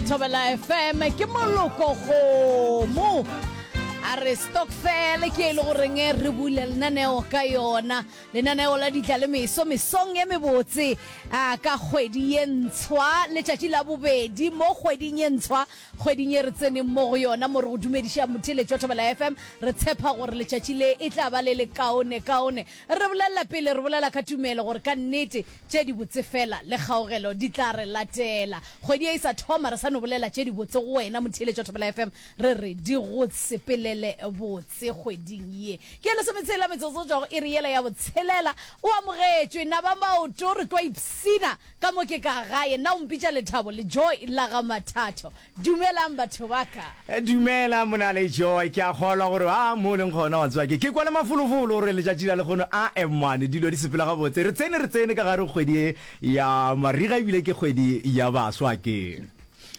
Thobela FM ke moloko kgomo a re stokfele ke e le goreng re bule lenaneo ka yona lenaneo la ditla le meso mesong e mebotse a ka kgwedi ye ntshwa letšatši la bobedi mo kgweding ye ntshwa kgweding e re tseneng mo go yona mo re go dumediša motheletšo thobela fm re tshepa gore letšatši le e tla ba le le kaone kaone re bolelela pele re bolela ka tumelo gore ka nnete Tše dibotse fela le kgaogelo di tla re latela. Kgwedi ye e sa thoma re sa no bolela tše dibotse go wena motheeletšo wa Thobela FM, re re di go sepelele botse kgweding ye. Ke ya lesometshela metsotso go tšwa go iri yela ya botshelela. O amogetšwe na ba maoto re tlo ipshina ka mo ke ka gae na o mpitša lethabo le joy la ga mathatho. Dumelang batho ba ka. Dumela Monale Joy, ke a kgolwa gore a mo o leng gona wa tseba ke ke kwa le mafolofolo gore letšatši la lekgono a mmane dilo di sepela gabotse. Re tsene re tsene ka gare go kgwedi ye ya mariga ebile ke kgwedi ya baswa ke.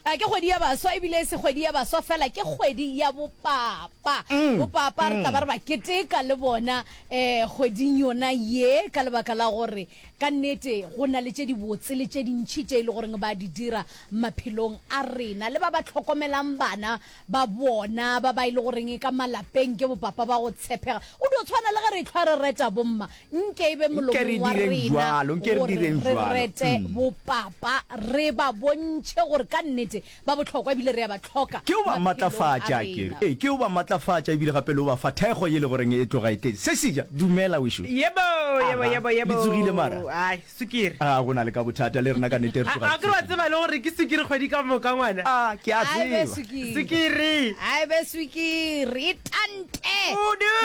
A ke kgwedi ya baswa ebile e se kgwedi ya baswa fela ke kgwedi ya bopapa. Bopapa re tla ba re ba keteka le bona um kgweding yona ye ka lebaka la gore Ka nnete, go na le tše dibotse le tše dintši tše e le goreng ba di dira maphelong a rena. Le ba ba hlokomelang bana ba bona, ba ba e le goreng ka malapeng ke bopapa ba go tshepega. Go dio tshwana le ge re ehlwa re reta bomma, nke e be Nke re molomong wa direng rena bjalo, nke re gore direng re bjalo. rete Mm. bopapa, re ba bontšhe gore ka nnete Ba bohlokwa ebile re a ba hloka. Ke yo ba matlafatša, ke re, ee, ke yo ba matlafatša ebile gape le yo ba fa thekgo ye le go reng e tloga e tletse. Se seja, dumela wešo. Yebo, yebo, Aga, yebo, yebo. le tsogile mara? Ai, sukiri. Aa, go na le ka bothata, le rena ka nnete re tloga re A ke re wa tsogile. tseba le gore ke sukiri kgwedi ka moka, ngwana? Aa, ke a Ai be tseba. swikiri. Sukiri! Ai be swikiri. E tante. Kudu!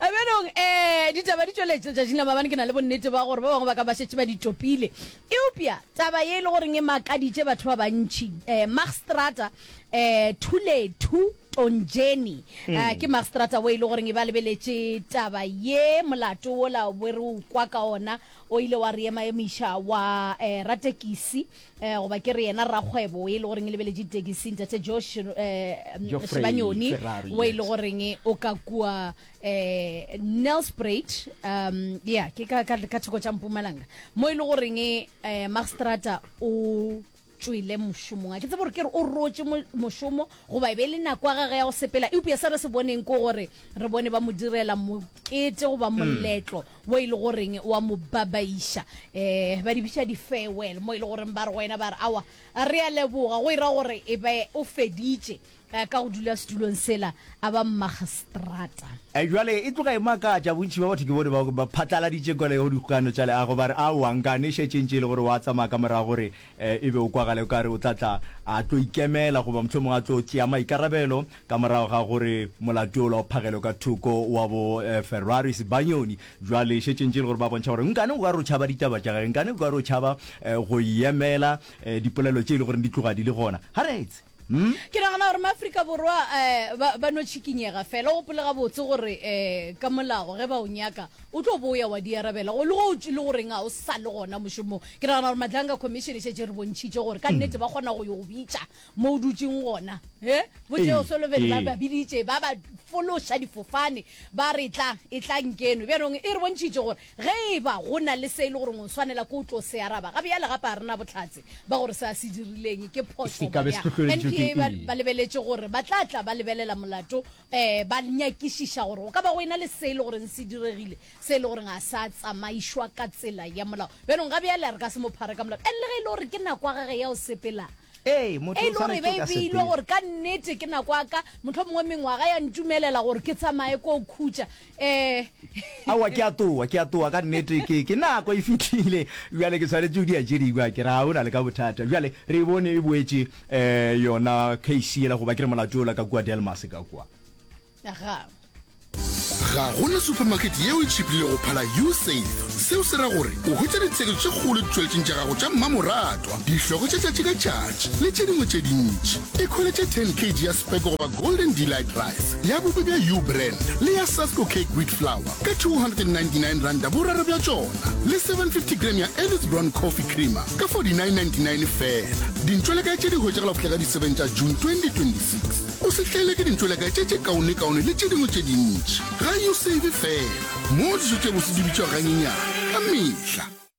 Bjanong, eh, ditaba di tšweletše letšatšing la maabane. Ke na le bonnete ba gore ba bangwe ba ka ba šetše ba di topile. Eupša taba ye e le goreng e makaditše batho ba bantši, eh, Magstrata eh, Thulethu Tonjeni, eh, ke magstrata wo e le goreng e ba lebeletše taba ye, molato wola be re o kwa ka ona, o ile wa re emaemiša wa eh, ratekisi, eh, goba ke re yena rakgwebo e le goreng e lebeletše ditekisi, Ntate Josh eh, Geoffrey Shebanyoni, Ferrari, wo e le yes. goreng o ka kua eh Nelspruit um yeah ke ka ka ka thoko tša Mpumalanga mo e le goreng eh Magstrata o tšwele mošomong a ke tsebe gore ke re o rotše mo- mošomo goba e be e le nako ya gage ya go sepela eupša se re se boneng ko gore re bone ba mo direla mokete goba moletlo wo e le goreng wa mo babaiša um ba di biša di-farewell mo e le goreng ba re go wena ba re awa a re a leboga go ira gore e be o feditše Ka go dula setulong sela, a ba mmagistrata. Bjale e tloga e makatša, bontši bja batho ke bone bao ba phatlaladitšego ka lego dikgokagano tša leago, ba re, Aowa, nkane e šetše e ntše e le gore o a tsamaya ka morago gore e be o kwagale o ka re o tla tla a tlo ikemela goba mohlomongwe a tlo tšea maikarabelo ka morago ga gore molato yola o phagelwe ka thoko wa bo Ferrari Sibanyoni. Bjale e šetše e ntše e le gore ba bontšha gore nkane o ka re o tšhaba ditaba tša gage, nkane o ka re o tšhaba go yemela dipolelo tše e le gore di tloga di le gona. Ga re etse. Ke nagana gore maAfrika Borwa um ba, ba no tšhikinyega fela. O gopole gabotse gore um ka molao ge ba o nyaka o tlo boya wa di arabela go le go e le goreng a o sa le gona mošomong. Ke nagana gore Madlanga Commission e šetše re bontšhitše gore ka nnete ba kgona go yo go bitša mo o dutšeng gona. He bo Ee, Teo Sullivan ba ee. ba biditše ba ba fološa difofane ba re tla e tla nkeno bjanong e re bontšhitše gore Ge e ba go na le se e le goreng o swanela ke go tlo se araba, ga bjale gape ga re na bohlatse ba gore se a se dirileng ke phošo goba bjang. NPA ba ba lebeletše gore ba tla tla ba lebelela molato ba nyakišiša gore go ka ba go e na le se e le goreng se diregile se e le gore ga sa tsamaišwa ka tsela ya molao. Bjanong ga bjale re ka se mo phare ka molato and le ge e le gore ke nako ya gage ya go sepela e e le gore e be e beilwe gore ka nnete ke nako ya ka, mohlomongwe mengwaga ya ntumelela gore ke tsamaye ko khutša. Eh. Aowa, ke a toa, ke a toa, ka nnete, ke, ke nako e fitlhile. Bjale ke tshwanetse o di a tše dingwe, ke ra o na le ka bothata. Bjale, re e bone e boetše, eh, yona case yela, goba ke re molato yola ka kua Delmas ka kua. Aga. Ga go na supermarket yeo e tšhiplile go phala Usave. Seo se ra gore o hwetša ditshekišo tše kgolo ditšweletšeng tša gago tša mmamoratwa, dihlogo tša tšatši ka tšatši le tše dingwe tše dintši. Ekhweletše 10 kg ya Kweke goba Golden Delight Rice, ya bobe bja U Brand le ya Sasco Cake Wheat Flour ka R299 boraro bja tšona, le 750 g ya Ellis Brown Coffee Creamer ka R49.99 fela. Dintšwelakae tše di hwetšagala go fihla ka di 7 tša June 2026. O se tlele ke dintšwelakae tše tše kaonekaone le tše dingwe tše dintši. Ga U Save fela, mo dijo tše bose di bitšwa ganyenyane ka mehla.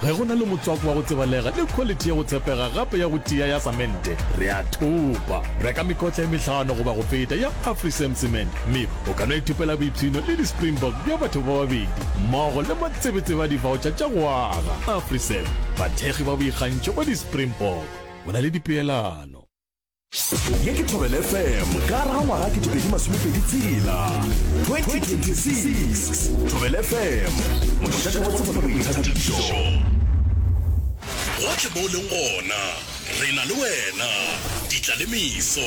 Ge go na le motswako wa go tsebalega le khwaliti ya go tshepega gape ya go tia ya samente, re a thopa. Reka mekotla e mehlano goba go feta ya Afrisam Cement, mme o ka no ithopela boipshino le di-Springbok bja batho ba babedi mmogo le matsebetsebe a divaotšha tša go aga. Afrisam, bathekgi ba boikgantšho ba di-Springbok. Go na le dipeelano. ye ke thobel fm ka raga ngwaga ke tobedi masomepedi tsela 2026 thobel fm mošate wa tsebo le boithabišo gotlhe mo o leng gona re na le wena ditla le meso